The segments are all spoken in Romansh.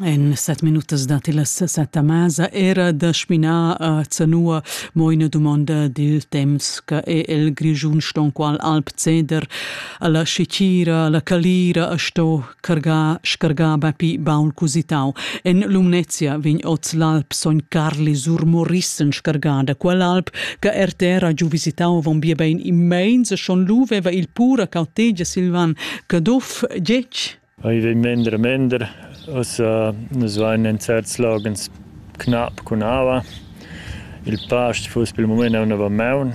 En set minutas datti las set a masa era da spinar a Zanua mo ina dumonda dil temps che è il Grischun stonqual alp ceder alla Scicira, alla Calira a sto cargar scargar bapi baul cusitau. En Lumnezia vegn oz l'alp Son Carli sur Morissen scargada quell'alp che RTR ha giu visitau avon bia bein immens e schon lu veva il pura cautegia Silvan Caduff Tgetg? I vei mender mender. Ossa nus vain in certs logens knapp cun aua. Il past fuss pel mumaint aunna va maun,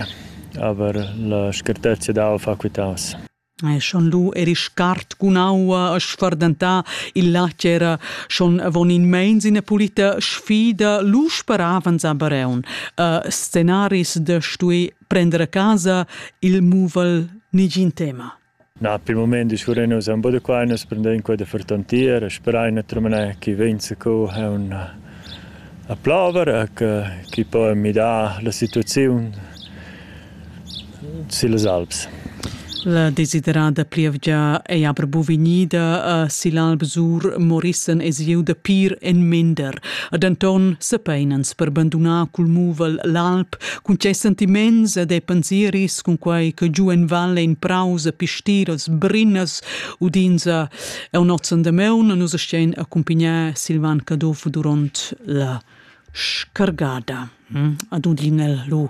aber la scartezia d'aua fa quitaus. E schon lu eri scart cun aua a sfardentà, il latg era schon avon in meins ina pulita sfida, lu sparavans a Bareun. Uh, scenaris da stui prender a casa il muvel nigin tema. Na, per il mument discurrein nus aunc buca da quai, nus prendein quei da fertontier e sperain naturalmein ch'i vegn zacu aunc a plover e che chi po midar la situaziun sillas alps. La desiderada plievgia ei aber buca vegnida a sill'Alp Sur Morissen e siu da pir en mender. Ad enton sepeinans per bandunar cul muvel l'alp cun tgei sentiments ed e pensiris cun quei che giu en val ein praus e pistiras brinas udins a onnozzen de meun nus stein accumpignar Silvan Caduff duront la scargada. Hm? Ad udin el lu